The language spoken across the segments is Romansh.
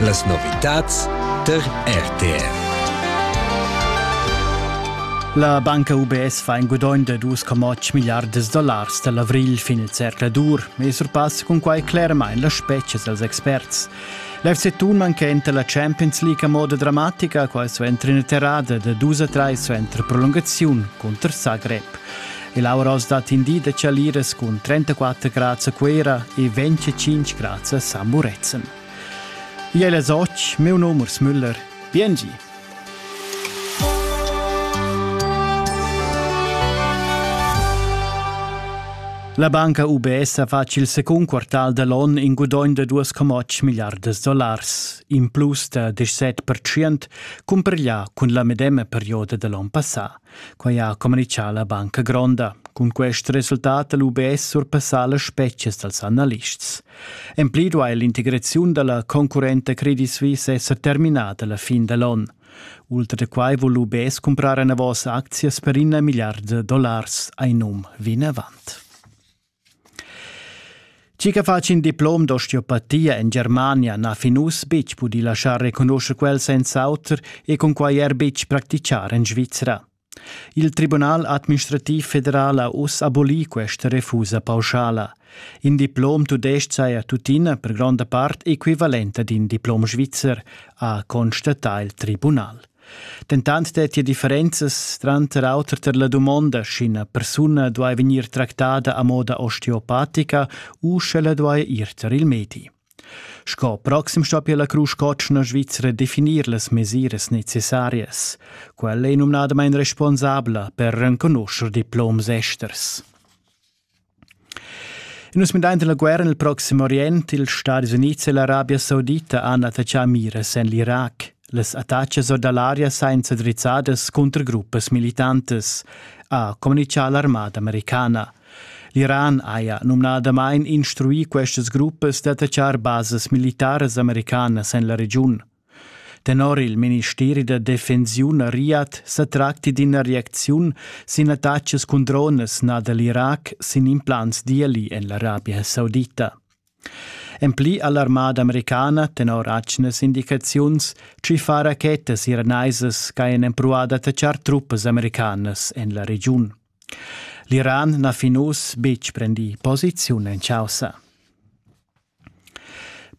Las novitads tar RTR. La banca UBS fa in gudogn da 2,8 miliards dollars da l'avrigl fin il zercladur e surpassa cun quai clermain las spetgas als experts. L'FC Thun manchenta la Champions League a moda dramatica, quai suenter ina terrada da dus a trais suenter prolungaziun cunter Zagreb. Il aura oz da tindì da Chaliras cun 34 grads a Cuera e 25 grads a San Murezzan. Igl è Soc, meu num Urs Müller. Biengi! La banca UBS ha fatg il secund quartal da l'on in gudogn da 2,8 miliardas dollars, in plus da 17% cumpareglià cun la medema perioda da l'on passà. Quai ha communitgà la Banca Gronda. Cun quest resultat ha l'UBS surpassà las spetgas dals analists. En pli duai l'integraziun da la concurrenta Credit Suisse esser terminada la fin da l'onn. Ultra da quai vul l'UBS cumprar enavos aczias per in milliard da dollars, ein um vinavant. Tgi che fa in diplom d'osteopatia en Germania n'ha fin uss betg pudì laschar reconuscher quel senz'auter e cunquai er betg practichar en Svizra. Il Tribunal administrativ federal ha uss abolì questa refusa pauschala. In diplom tudestg saja tuttina per gronda part equivalent ad in diplom svizzer, ha constatà il tribunal. Dentant dettia differenzas tranter auter tar la dumonda, sch'ina persuna duai vegnir tractada a moda osteopatica u sch'ella duai ir tar il medi. Sco proxim stoppia la Crusch Cotschna Svizra definir las mesiras necessarias. Quella è numnadamain responsabla per renconuscher diploms esters. Nus mindain la guerra nel Proxim Orient, ils Stadis Units e l'Arabia Saudita han attaccà mires en l'Irac. Las attacas or da l'aria sainza drizzadas cunter gruppas militantas, ha comunichà l'armada americana. L'Iran haja numnadamain instruì questas gruppas d'attaccar basas militaras americanas en la regiun. Tenor il ministeri da defensiun a Riyadh sa tracti d'ina reacziun sin attacas cun dronas nà da l'Irac sin implants d'ieli en l'Arabia Saudita. En pli ha l'armada americana, tenor atgnas indicaziuns, tschiffà rachetas iranaisas ch'hajan empruvà d'attaccar truppas americanas en la regiun. L'Iran n'ha fin uss betg prendì posiziun en chaussa.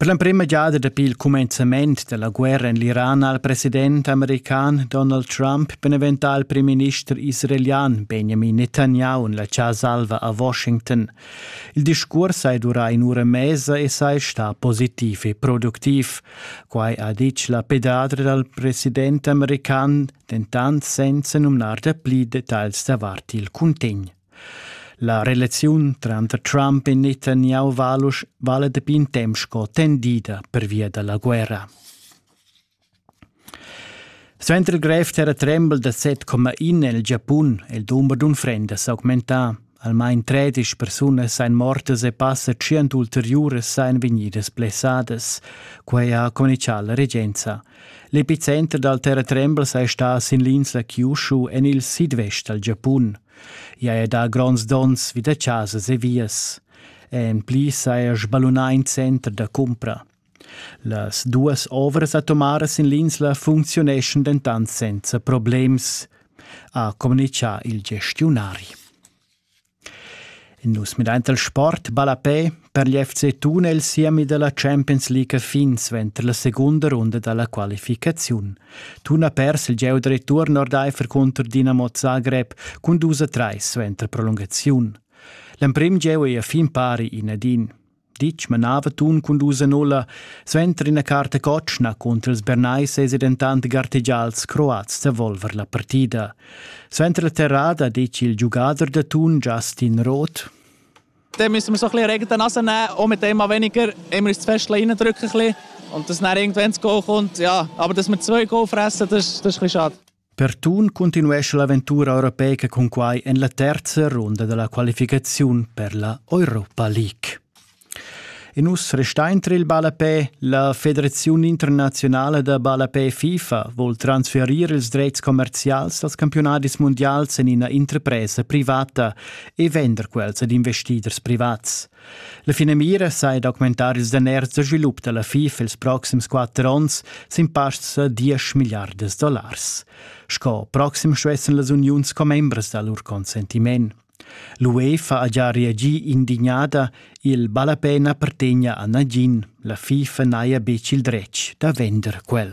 Per l'emprema giada dapi il cumenzament della guerra en l'Iran ha il president american Donald Trump beneventà il primminister israelian Benjamin Netanyahu en la Salva a Washington. Il discurs hai durà in ura mesa e sei sta positiv e productiv. Quai ha ditg la pedadra dal president american, dentant senza numnar da pli details davart il cuntegn. La relaziun tranter Trump e Netanyahu valusch vala dapi in temp sco tendida pervia da la guerra. Suenter il grev terratrembel da 7,1 el Giapun è il dumber d'unfrendas s'augmentà. Almain 13 persunas èn mortas e passa 100 ulteriuras èn vegnidas blessadas. Quai ha communichà la regenza. L'epicenter dal terratrembel è stà sin l'insla Kyushu en il sidvest dal Giapun. Ia è da gronds dons vi da chasas e vias. En pli saja sballunà in center da cumpra. Las duas ovras atomaras in l'insla funcziuneschan dentant senza problems, ha communitgà il gestiunari. Nus midain dal sport ballapè per gli FC Thun el siemi dalla Champions League fin suenter la secunda runda dalla qualificaziun. Thun ha pers il gieu da return ordaifer contro Dinamo Zagreb cun dus a 3 suenter prolungaziun. L'emprim gieu ei a fin pari in ad in. Ditg manava Tun cun dus Enola suenter ina carta cotschna cunter ils Bernays esi dentant gartegials croats da volver la partida. Suenter la terrada dice il giugader da Tun Justin Roth dann müssen wir so ein bisschen Regen Nase nehmen, auch mit dem weniger, immer uns zu fest reindrücken. Und dass dann irgendwann das Goal kommt, ja, aber dass wir zwei Goal fressen, das, das ist ein bisschen schade. Per Thun continuescha l'aventura europeica cun quai en la terza runda della qualificaziun per la Europa League. E nus restein tra il ballapè. La Federazione Internazionale da Ballapè FIFA vuol transferire ils dretgs commercials als campionadis mondials en ina interpresa privata e vender quels ad investiders privats. La finamira sai d'augmentar ils daners da svilup da la FIF ils proxims quatter onns sin pasts da 10 milliardas dollars. Sco proxim stuessan las uniuns commembras da lur consentiment. L'UE fa già reagì indignada, il ballapena appartegna a nagin, la FIFA n'haja betg il dretg da vender quel.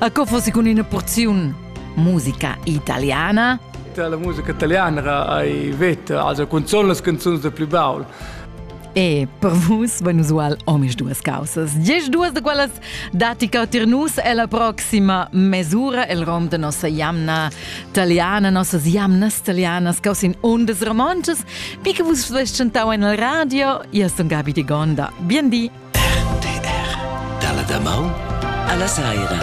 A co fosse cun ina porziun musica italiana? La musica italiana hai veta, also cunzun las canzuns da pli baul. E per vus van usual omis duas causas. Dieci duas de quelles datica tir nus e la proxima mesura el rom de nossa jamna italiana, nossas jamnas italianas causin undas romances, mi che vus svestgentau en el radio, io sun Gabi di Gonda. Bien di! RTR dalla damaun alla saira.